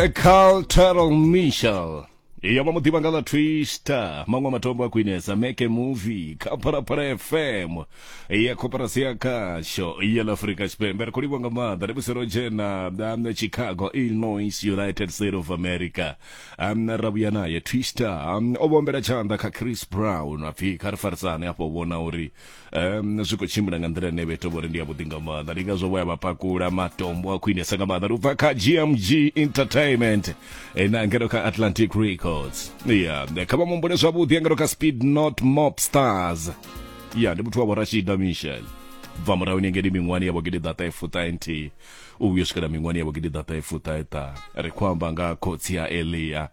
A Carl Turtle Mitchell iyo vha mu ḓivha nga ḽa twister maṅwe matombo a khwinesa make movie kha phalaphala fm ya koperasi ya khasho ya ḽa afurika tshipembe ri khou livha nga maanḓa ri musi ro dzhena um, chicago illinois united state of america um, ra vhuya naye twister um, o vhombela tshanḓa kha chris brown apfhi kha ri farisane afho vhona uri um zwi khou tshimbila nga nḓila ine vha ita vhori ndi yavhuḓi nga maanḓa ndi ngazwo vho ya vha pakula matombo a khwinesa nga maanḓa ndi ubva kha gmg entertainment eh, na ngeno kha atlantic records ya kha vha mumbule zwavhuḓi ya ngeno kha speed not mop stars ya ndi muthu wa vhorashida michel bva murahu ni ngeni miṅwani ya vhogidi ḓata efuṱa nthihi u vhuyo swikela miṅwani ya vhogidi ḓata efuṱa eṱa ri khou amba nga khotsi ya elia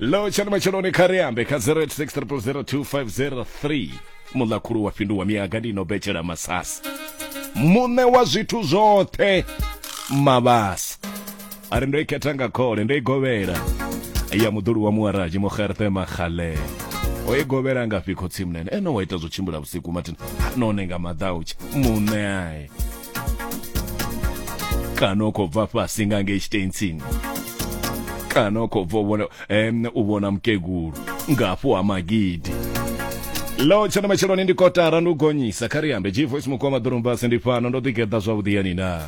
lo tshani matsheloni kha ri ambe kha 0860002503 muḽakhulu wa fhinduwa miyaga ndi no betshela masasi muṋe wa zwithu zwoṱhe mavhasa a ri ndo i khetha nga khole ndo i govhela ya muḓulu wa muwaraji mugerthe makgalele o i govhela ngafhi khotsi munene ene wa ita zwo tshimbila vhusiku mathina none nga maḓautsha muṋe ae kana u khou bva fhasi nga ngei tshitensini kana u khou bva u vhona em, u vhona mukegulu nga hafhu ha magidi lo tshena matsheloni ndi kotara ndi u gonyisa kha ri ambe gvoice mukoma ḓorombasi ndi fhano ndo ḓigeḓa zwavhuḓi yani na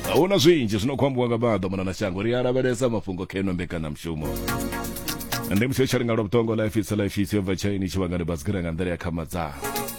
a hu na zwinzhi zwi no khou ambiwa nga maḓo mona na shango ri a lavhelesa mafhungo kha ino mbekanyamushumo ndi musho tshalinga lwa vhuṱongo life itsa life itsa yo bva tshaini tshivhangani basikira nga nḓila ya khamadzana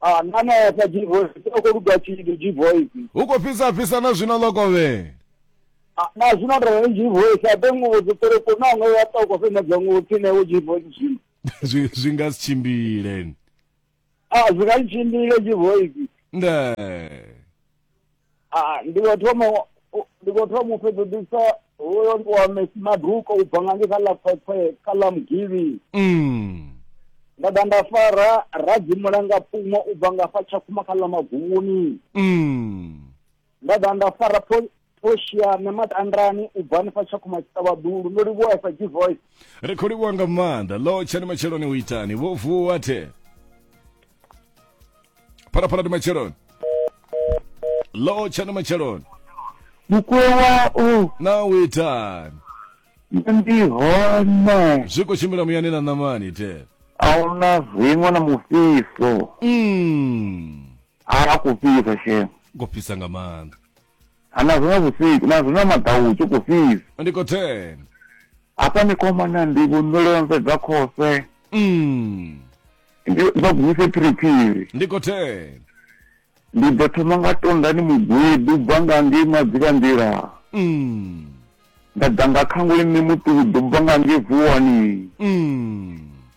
Ah, na nesa G voice. O khou luga tshithu G voice. hu khou fhisa fhisa na zwino ḽo kovhe Ah, na zwino ndo ri G voice a ḓe nguvo dzi ṱere ko na ngoya to ko fena dza nguvo tsine wo G voice zwino. Zwi- zwi nga si tshimbile Ah, zwi nga tshimbile G voice. nde ndi khou thoma ndi khou thoma u fhedzisa hoyo ndi wa mesi maduko u bva nga nge kha ḽa khwekhwe kha ḽa mugivhi mm. nda ḓa nda fara radzimulanga pfumo u bva nga fa tshakhuma kha ḽa maguvhuni mm. nda ḓa nda fara Portia na Matandrani u bva hanefha tshakhuma tshiṱavhaḓulu ndo livhuwa sa g voice ri khou livhuwa nga maanḓa lo tshani matsheloni u itani vho vuwa the phalaphala ndi matsheloni lo tshani matsheloni mukuwa u na witani ndi hone zwi khou tshimbila muyani na ṋamani te ahuna zwiṅwe na mufhiso mm. a kufhisa shema ngo fhisa nga maanḓa Ha na zwino vhusiku na zwino maḓau hu tshi khou fhisa ndi khou thena hafha ni khou mana ndi vhundolonze dza khose Mm, ndi vha guvise phiriphiri ndi khou thena ndi ḓo thoma nga tonda ni mugwedu bva nga ngei madzivha nḓila Mm, nda ḓa nga khanguli ni muṱuku ḓo bva nga ngei vuwani mm,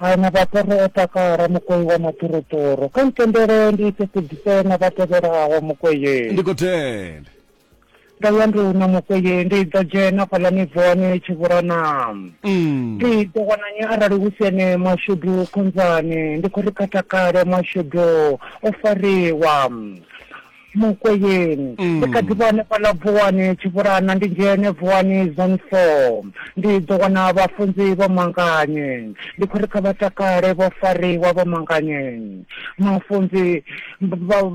Ha na vhaṱoro o takala mukwei wa maṱoroṱoro kha ntendele ndi ise kudzise na vha tevhelaho mukweye ndi khou tenda ndo ya ndi una mukweye ndi ḓo dzhena fhaḽa mivhone tshivhurana Mm. ndi ḓo wana nyi arali hu si ene mashudu khonzani ndi khou ri kha takale mashudu o fariwa mukweyeni mm. ndi kha ḓi vha hanefha ḽa vuwani tshivhulana ndi dzhene vuwani zone four ndi ḓo wana vhafunzi vho manganye ndi khou ri kha vha takale vho fariwa vho manganye mafunzi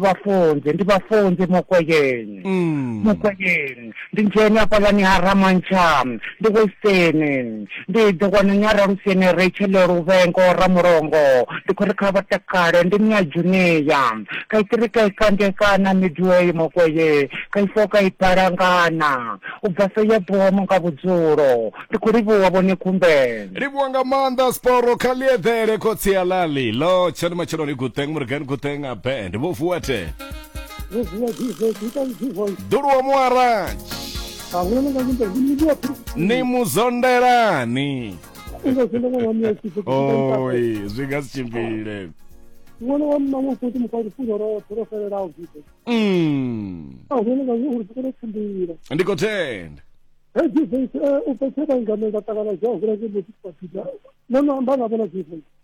vhafunzi ndi vhafunzi mukweyeni mm. mukweyeni Ndi dzheni hafhaḽani ha Ramantsha, ndi Western, ndi ḓo wana ni ha Raluseni, Rachel, Luvhengo, Ramulongo. Ndi khou ri kha vha takale, ndi ni ha Junea. Ka i tiri, ka i kande, ka na Midway, Mokwee, ka i foo, ka i bala, nga na. U bva fee ya bomo nga vhudzulo. Ndi khou livhuwa vho ni kumbe. Livhuwa nga maanḓa Sporo kha ḽieḓele khotsi a Lali ḽo tshani matsheloni Guteng Morgan Guteng a band vho vuwa the. ḓuluwa muaratshi ni muzondelani oi zwi nga si tshimbile ṅwana wa mma ṅwe futhi mufha lufuno roṱhe ro fhelelaho zwithu Mm. a hone nga uri sikolo tshimbila ndi khou tenda he jesus u fhetshe vhaingamela ṱangana zwa hula ke muthu kwapita no no amba nga vhona jesus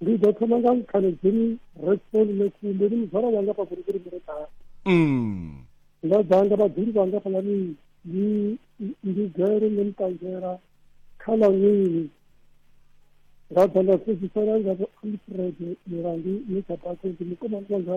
ndi ḓo thoma nga mukhaledzini reston mesi ndi ndi muzwala wanga pa kurikuri muretaa mm. nga dzanga vhadzuli vhanga fhalani ndi ndi gele ndi mutangela kha ḽa nwini nga dzanga sedzisela nga vho alfred milandu ni tsha bako ndi mukomani wanga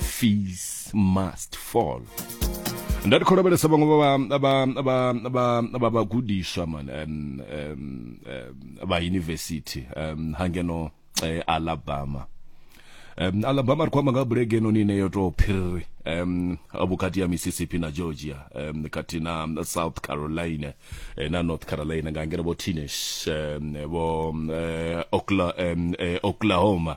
fees must fall nda ndi khou lavhelesa vhaṅwe vha vha- vha- vha- vha- vha vhagudiswa man em, em, em, vha yunivesithi em, ha ngeno eh, alabama um, alabama ri khou amba nga bulege enoni ine yo tou phiriri um, vhukati ya mississippi na georgia um, kati na um, south carolina eh, na north carolina nga ngeno vho teenage um, vho um, eh, Okla, um, eh, oklahoma